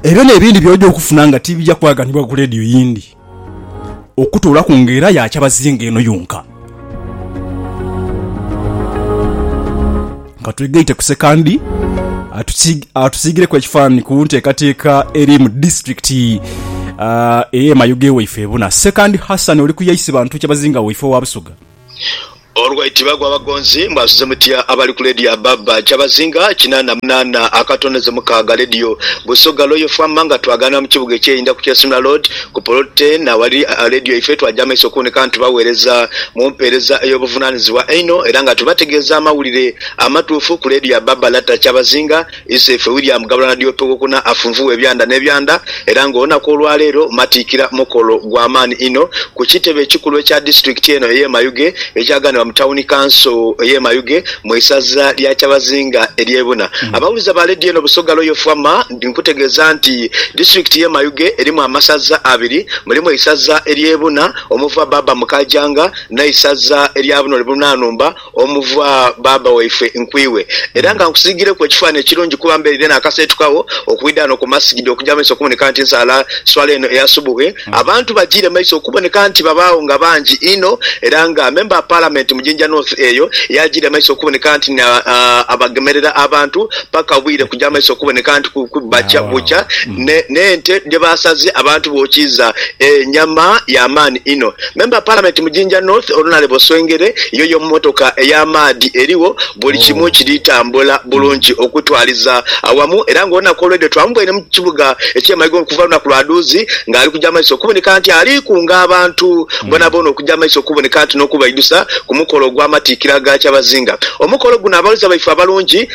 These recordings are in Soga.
Ebyo n'ebindi by'oja okufuna nga tibija kwaganibwa ku leediyo yindi okutoolaku nga era ya kyabazinga eno yonka. Ka twegaite ku Sekandi atusiigireku ekifaananyi ku nteekateeka eri mu disiturikiti ey'e Mayuge waife ebuna. Sekandi Hassan oli ku ya Isibantu kyabazinga waife owa Busoga. Olwaiti bagwa abagonzi mbu asuze mutya abali ku leediyo ababba kyabazinga kinaana munaana akatoneze mukaaga leediyo Busoga Royal Fm nga twagaana mu kibuga eky'e Inda ku Kyesuna Road ku poloti eno awali leediyo yaife twagya amaiso okuboneka nga tubagheereza mu mpeereza ey'obuvunaanizibwa einho era nga tubategeeza amawulire amatuufu ku leediyo ababba Lata Kyabazinga Isaife William Gabula Nadiope Owokuna afunvugha ebyanda n'ebyanda era nga olunaku olwaleero matiikira mukolo gwa maani inho ku kitebe ekikulu ekya disitulikiti eno ey'e Mayuge ekyaganibwa mu tawuni kanso ey'e Mayuge mu isaza lya Kyabazinga ery'e Buna. Abawuliza ba leediyo eno Busoga Royal Fm nkutegeeza nti disitulikiti y'e Mayuge erimu amasaza abiri, mulimu eisaza ery'e Buna omuva Baaba Mukaajanga n'eisaza erya Bunoli Bunanumba. Omuva, Baaba waife, nkwiwe, era nga nkusiigireku ekifaanhi ekirungi kuba mbeereire naakaseetukagho okwidha ghano ku masigidi okugya mu maiso okuboneka nti nsaala swala eno eya subuhi. Abantu bajiire maiso okuboneka nti babaagho nga bangi inho era nga Member wa Parliament mu Jinja North eyo yaajiire maiso okuboneka nti ni abagemerera abantu paka obwire kugya maiso okuboneka nti bukya bukya n'ente dhebaasaze abantu bookiiza enyama ya maani inho. Memba Palamenti mu Jinja North Onalebo Swengere yoyo mmotoka ey'amaadhi erigho buli kimu kiri tambula bulungi okutwaliza awamu era ng'olunaku olw'eidho twamubwaire mu kibuga eky'e Mayigo okuva lunaku lwa dhuuzi ng'ali kuja maiso okuboneka nti ali kunga abantu boonaboona okuja maiso okuboneka nti n'okubaidhusa ku mukolo ogw'amatikkira ga Kyabazinga. Omukolo guno abaweereza baife abalungi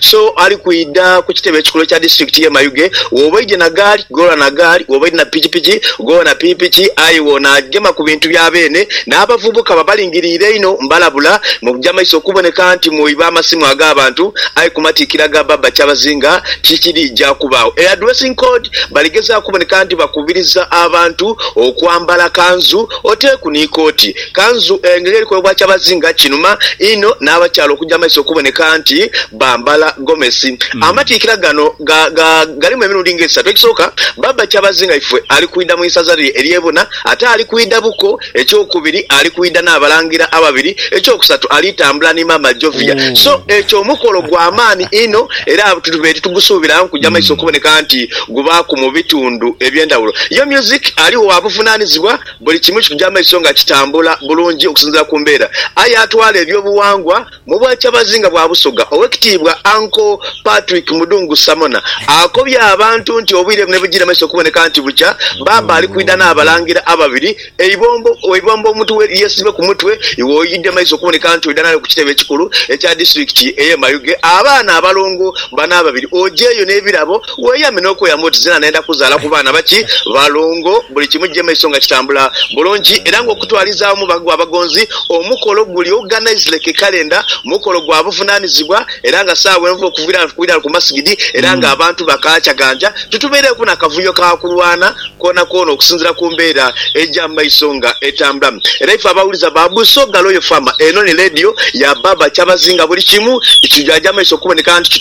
So ali kwidha ku kitebe ekikulu ekya disiturikiti y'e Mayuge, wooba oidhye na gaali, ghoola na gaali, wooba oidhye na pikipiki, ghoola na pikipiki, aye w'onaagema ku bintu bya beene. N'abavubuka babalingiriire einho, mbalabula, muja maiso okuboneka nti mwiba amasimu ag'abantu, aye ku matikkira ga Baaba Kyabazinga tikiriija kubaagho. Eya dressing code, baligezaaku okuboneka nti bakubiriza abantu okwambala kanzu oteeku ni kooti. Kanzu eno era erikolebwa kyabazinga kinuma inho n'abakyala okuja maiso okuboneka nti bambala gomesi. Amatiikira gano ga ga galimu emirundi nga esatu. Ekisooka, Baba Kyabazinga ife ali kwidha mu isaza lye ery'e Buna ate ali kwidha buko. Ekyokubiri, ali kwidha n'abalangira ababiri. Ekyokusatu, ali tambula ni Maama Jovia. So ekyo mukolo gwa maani inho era tube titugusuubira nkuja maiso okuboneka nti gubaaku mu bitundu eby'endhawulo. Yo myuziki aligho wa buvunanizibwa. Buli kimu kikuja maiso nga kitambula bulungi okusinziira ku mbeera. Aye atwala eby'obuwangwa mu bwakyabazi nga bwa Busoga, Owekitiibwa Uncle Patrick Mudungu Samona akobye abantu nti obwire buno ebujiire maiso okuboneka nti bukya, Baaba ali kwidha n'Abalangira ababiri e Ibombo, e Ibombo omuntu we yesibe ku mutwe iwe oidhe maiso okuboneka nti oidha nayo ku kitebe ekikulu ekya disitulikiti eye Mayuge abaana abalongo bano ababiri ojeeyo n'ebirabo Weeyame n'okweyama oti, Nze na nenda kuzaala ku baana baki? Balongo, buli kimu kija maiso nga kitambula bulungi era ng'okutwalizaawo mu bago abagonzi omukolo guli ogugha Naizileke Calendar mukolo gwa buvunaanizibwa era nga saawa enva okuviira ghano tukuwira ku masigidi era ng'abantu bakaacaganja titubeireghoku na kavuyo ka kulwana kwonakwona okusinzira ku mbeera eja mu maiso nga etambula. Era ife abawuliza ba Buso ga Royal Farmer eno ni leediyo ya Baaba Kyabazinga buli kimu kitujaja amaiso okuboneka nti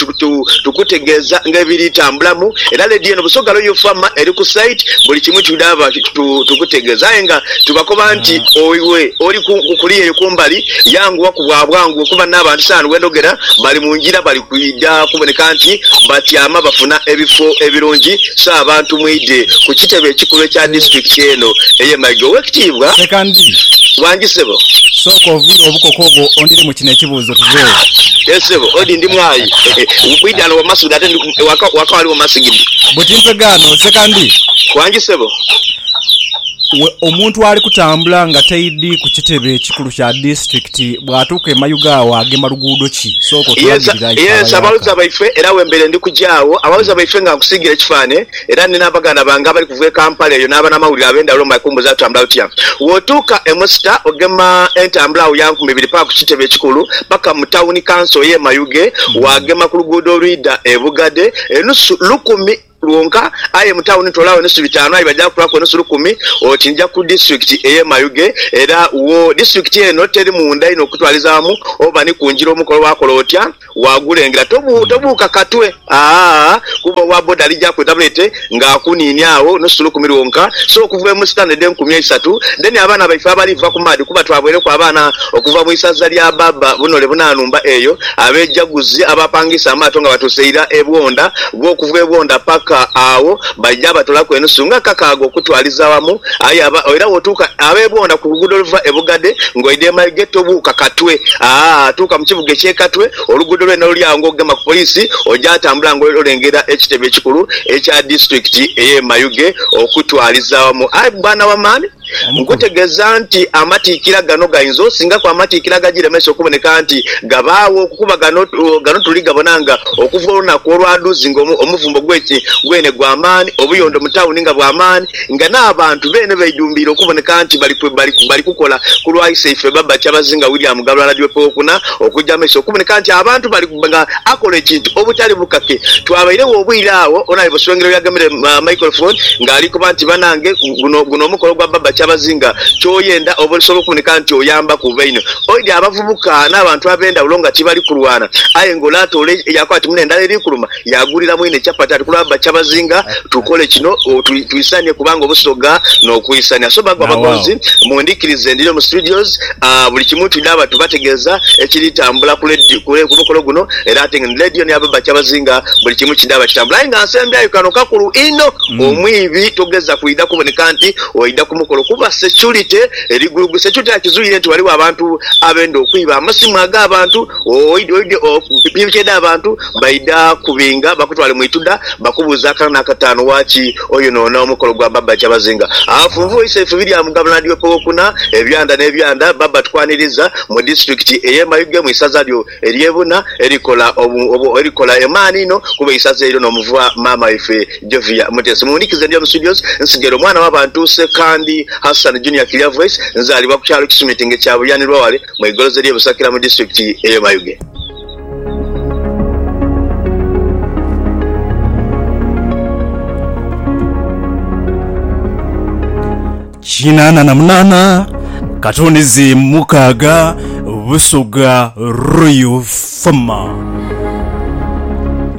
tukutegeeza nga ebiri tambulamu era leediyo eno Buso ga Royal Farmer eri ku site buli kimu kidhaaba tukutegeeza aye nga tubakoba nti iwe oli kuliya eyo kumbali yanguwaku bwa bwangu okuba n'abantu saano wendhogera bali mu ngira bali Lwidha kuboneka nti batyama bafuna ebifo ebirungi, so abantu mwidhe ku kitebe ekikulu ekya disitulikiti eno eye Maiga. Owekitiibwa. Sekandi. Wangi sebo. Sooka oviire obukoko obwo ondiremu kino ekibuuzo tuveewo. Yee sebo, odi ndi mwaayi. Mwidhe ano wa masigidi ate ndi waka waka waliwo masigidi. Buti mpege ano sekandi. Wangi sebo. We omuntu ali kutambula nga taidhi ku kitebe ekikulu kya disitulikiti bwatuuka e Mayuga awo agema luguudo ki? ki? Sooka otulagirire aye Ye nsi abaweereza baife era wembeire ndi kuja agho abaweereza baife nga nkusiigire ekifaanhe era ni n'abaganda bange abali kuva e Kampala eyo n'abanamawulire ab'endhawulo mu makumbuza atambula otya wootuuka e Musita ogema entambula agho ya nkumi ibiri paka ku kitebe ekikulu paka mu tawuni kanso ye Mayuge waagema ku luguudo olwidha e Bugadhe enusu lukumi lwonka, aye mu tawuni toolagho enusu bitaanu aye baja kutwaaku enusu lukumi oti nja ku disitulikiti ey'e Mayuge, era wo disitulikiti eno teri munda inho kukutwalizaamu oba ni kungira omukolo waakola otya waagulengera. Tobuuka katwe aah kuba owa boda alija kwetabula ete nga akuniinia agho nusu lukumi lwonka so okuva e Musita n'edha enkumi eisatu then abaana baife abaliva ku maadhi kuba twaboireku abaana okuva mu isaza lya Baba bunole bunanumba eyo Abeejaguzi abapangisa amaato nga batuuse ira e Bwondha, gho okuva e Bwondha paka agho baija batolaku enusu nga kakaaga okutwaliza awamu. Aye aba era wotuuka ab'e Bwondha ku luguudo oluva e Bugadhe ng'oidha e Mayuge tobuuka Katwe. Aa tuuka mu kibuga eky'e Katwe, oluguudo lwene luli agho ng'ogema ku poliisi oja atambula nga olengera ekitebe ekikulu ekya disitulikiti ey'e Mayuge okutwaliza awamu. Aye bwana wa man! Nkutegeeza nti amatikkira gano gainza osingaku amatikkira agagiremesa okuboneka nti gabaagho, kuba gano tuli gabona nga okuva olunaku olwadhuzi nga omuvumbo gwene gwa maani, obuyondo mu tawuni nga bwa maani, nga n'abantu beene beidhumbiire okuboneka nti bali kukola ku lwa iseife Babacha Bazinga William Galwala Diope Okuna, okuja amaiso okuboneka nti abantu bali nga. akola ekintu obutali bukake. Twabairegho obwire agho onaye Buswengero yagemere microphone nga alikoba nti banange guno guno omukolo gwa Baba Kyabazinga kyoyenda oba olisobola okuboneka nti oyambaku baino oidhi abavubuka n'abantu abendhawulo nga tibali kulwana aye nga ole atoola yakoba ati mune endhala eri kuluma yagulira mwine chapati ati kulwa Baba Kyabazinga tukole kino twisanie kubanga obusoga n'okwisania so bagwa Nawe agho. abagonzi mundhikirize ndhino mu studios Buli kimu twidhaba tubategeeza ekiri tambula ku ledi, ku mukolo guno era ate ni ledi yona yaba bakyabazinga buli kimu kidhaba kitambula aye nga nsembyayo kano kakulu inho omwibi togeza kwidha kuboneka nti oidha ku mukolo kuba securite eri gulugu. Securite era kizuire nti ghaligho abantu abenda okwiba amasimu aga bantu, oidha, piki edha bantu. Baidha kubinga bakutwale mu ituda, bakubuuze akana n'akataanu waaki oyonoona omukolo gwa Baba Kyabazinga. Afunvu Isaifubi lya Mugaba Nadiope Wokuna, ebyanda n'ebyanda, Baba Tukwaniriza, mu disitulikiti ey'e Mayuge mu isaza lyo ery'e Buna erikola erikola emaani inho kuba isaza eryo n'omuvwa maama waife Jovia Mutesi. Muwunikize ndi omu studios nsigere omwana w'abantu Ssekandi Hassan Junior Clear Voice, nzaalibwa ku kyalo Kisumitinga ekya Buyanirwa wale mu igoloza ery'e Busakira mu disitulikiti ey'e Mayuge. Kinaana na munaana, katunizi mukaaga, Busoga Royal Fama.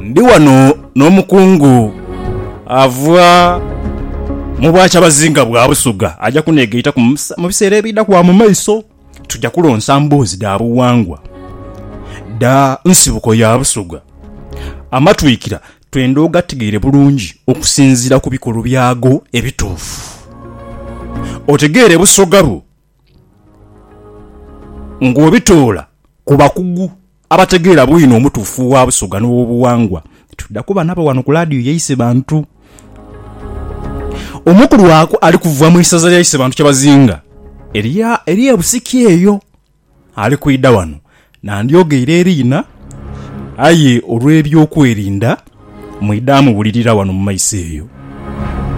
Ndi wano n'omukungu ava mu bwakyabazinga bwa Busoga, aja kuneegaitaku mu bisa- mu biseera ebidha kuba mu maiso. tuja kulonsa mboozi dha bughangwa dha nsibuko ya Busoga. Amatwikira twenda ogategeere bulungi okusinziira ku bikolo byago ebituufu, otegeere Busoga bwo ng'obitoola ku bakugu. Abategeera bwino omutuufu wa Busoga n'owobuwangwa tudda kuba nabo wano ku laadiyo ya Isebantu. Omu ku lwaku ali kuva mu isaza lya Isebantu Kyabazinga erye Busiki eyo ali kwidha wano. Nandyogeire eriina aye olw'ebyokwerinda mwidha muwulirira wano mu maiso eyo.